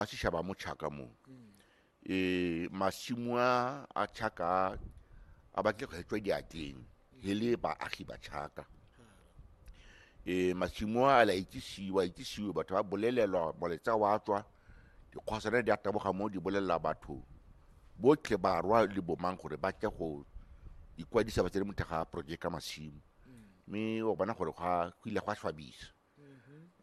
a sešaba a mo tšhaka moo um masimo a a tšhaka a- a batle go hetswa diatleng he le baagi ba tšhaka um masimo a la itsisiwa itsisiwe batho ba bolelelwa moletsa wa tswa dikgwasana di a taboga moo di bolelela batho botlhe barwa le bomang gore ba tle go ikwadisa ba tsene mo thega projeka masimo mme o bona gore gwa- go ile gwa swabisa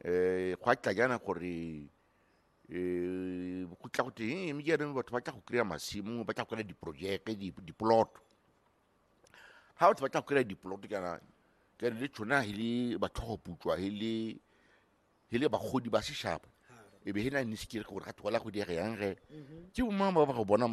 um gwa tla jana gore eh, go tla go teng mme jaanong batho ba tla go kry-a masimo ba tla go kry-a diprojeke dipoloto ga batho ba tla go kry-a dipoloto kana kare le tshona he le batlhogoputswa he le he le bagodi ba seshaba e be he na ne sekere gore ga thola go diege yang ge mhm. ke bomang ba ba go bona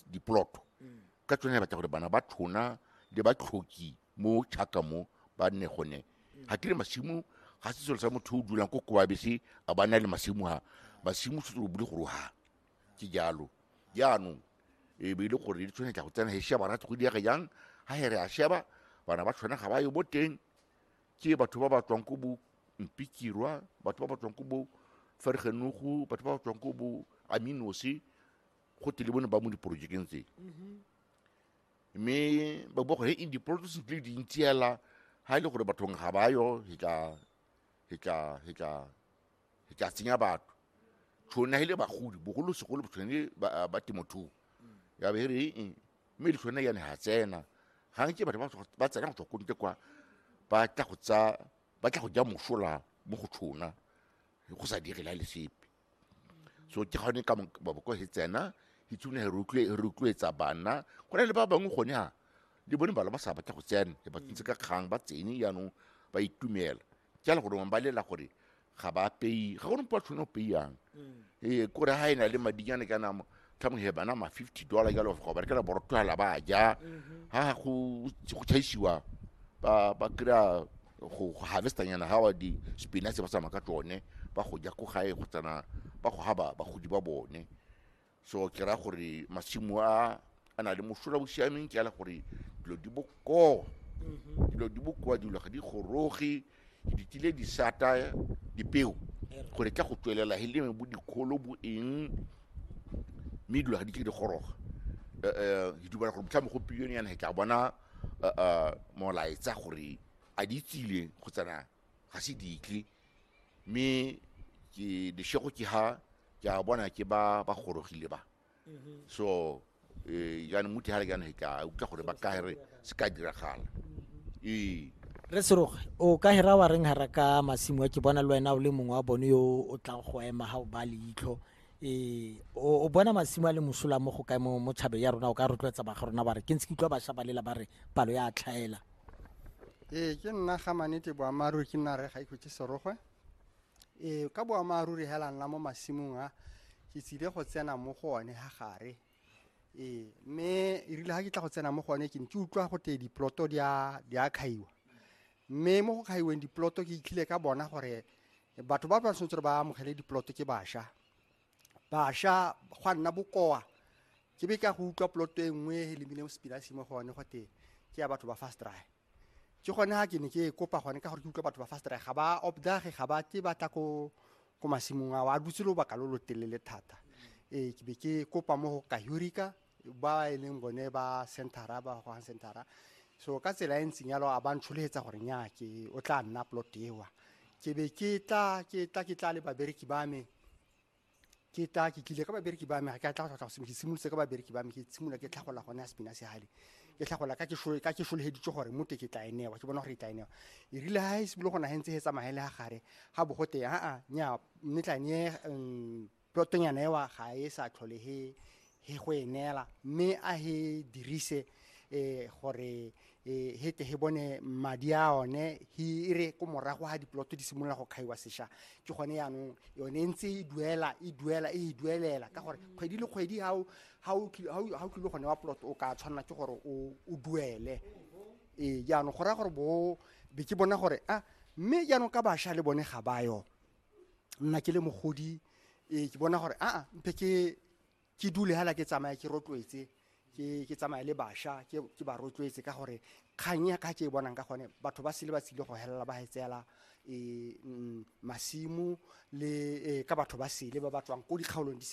dipoloto mm. ka tsone batla gore bana ba tshona le ba tlhoki mo chaka mo ba nne gone ga kere masimo ga se selo sa motho o dulang ko koabese a ba na le masimo ga masimo se o bule gore ha ke jalo jaanong e be e le gore di tshwane tla go tsena he sheba ra go diege jang ga he re a sheba bana ba tshwana ga ba yo bo teng ke batho ba ba tswang ko bo mpikirwa batho ba ba tswang ko bo fergenogo batho ba ba tswang ko bo aminose go tele bone ba mo diporojekeng tse mme ba bua gore e di-protests di le dintsi hela ha e le gore bathong ga ba yo he tla he tla he tla he tla tsenya batho tshone he le bagodi bogolosegolo tshone ba ba temothuo ya be re eng mme le tshone yane ha tsena ga nke batho ba tswa- ba tsena go tswa ko ntle kwa ba tla go tsa ba tla go ja mosola mo go tshona go sa direla le sepe so ke gone ka maboko he tsena he tsune he rotloetsa bana go na le ba bangwe gone ha le bone bala ba sa batla go tsena e ba tsentse ka kgang ba tsene jaanong ba itumela ke ala gore ba lela gore ga ba pei ga gone mpo a tshwane go peiyang ee kore ga e na le madinyane ka namo tlhamo he bana ma fifty dollar jalo go berekela borotogela ba ja ha go go tšhaisiwa ba ba kry-a go go harvestanyana ga wa di spinach ba tsamaya ka tsone ba go ja ko gae go tsena ba go ga ba- bagodi ba bone so ke ra gore masimo a a na le mosola o siameng ke ala gore dilo di bokoa dilo di bokoa dilo ga di goroge Ke ditile disata, dipeo, gore tla go tswelela he leme bo dikgolo bo eng mme dilo ga di ke di goroga um ke dumela gore motlhamo go pilione yana he tla bona eh, eh, molaetsa gore a di tsile go tsena ga se ditle mme ke leshego ke ha ke a bona ke ba ba gorogile ba so eh, jaanong mo tihare jaanong he ka utlwa gore ba kagere se ka diragala ee re seroge o ka hera wa reng hara ka masimo a ke bona le wena o le mongwe wa bone yo o tlang go ema ga o ba leitlho um o bona masimo a le mosola mo go kae mo mo tšhabeng ya rona o ka rotloetsa baga rona ba re ke ntse ke utlwa bašwa ba lela ba re palo ya tlhaela ee ke nna ga manete boammaaruri ke nna re ga ikhutse serogwe Ee, ka boammaaruri hela nna mo masimong a ke tsile go tsena mo go one ha gare ee mme e rile ga ke tla go tsena mo go one ke ne ke utlwa go tee diploto di a kgaiwa mme mo go kgaiweng diploto ke itlhile ka bona gore batho ba ba tshwanetse gore ba amogele diploto ke basha Basha gwa nna bokoa ke be ka go utlwa poloto e nngwe e lemile mo sepinasi mo gone gote ke ya batho ba fast dry ke gone ga ke ne ke e kopa gone ka gore ke utlwa batho ba fast dry ga ba obdage ga ba ke ba tla ko ko masimong ao a dutse lobaka lo lo telele thata ee ke be ke kopa mo go kahurika ba e leng bone ba centera ba gogang centera so ka tsela e ntseng yalo a ba ntsholegetsa gore nya ke o tla nna plot ewa ke be ke tla ke tla ke tla le babereki ba me ke tla ke tlile ka babereki ba me ga ke a tla go tlhotlha ke simolotse ka babereki ba me ke tshimola ke tlhagola gone ya sepina se gale ke tlhagola ka ke solegeditse gore mote ke tla enewa ke bona gore e tla enewa e rile ga e simolo go nagentse e tsamagele ga gare ga bogote aa nya mme tla ne um, Plotonyana ewa ga e sa tlhole he he go e neela mme a he dirise eh, gore eh, he tle he bone madi a one he e re ko morago ga diploto di simolola go kgaiwa sesha ke gone yaanong yone e ntse e duela e duela e e duelela ka gore kgwedi le kgwedi ga o- ga o kile- ga o ga o kile gone wa ploto o ka tshwanela ke gore o o duele ee jaanong go raya gore bo be ke bona gore a mme jaanong ka bašwa le bone ga bayo nna ke le mogodi e ke bona gore aa mpe ke ke dule hala ke tsamaya ke rotloetse ke ke tsamaya le basha ke ke ba rotloetse ka gore kgang ya ka ke e bonang ka gone batho ba sele ba tsile go helela ba hetseela e mm, masimu le eh, ka batho ba sele ba ba tswang ko dikgaolong di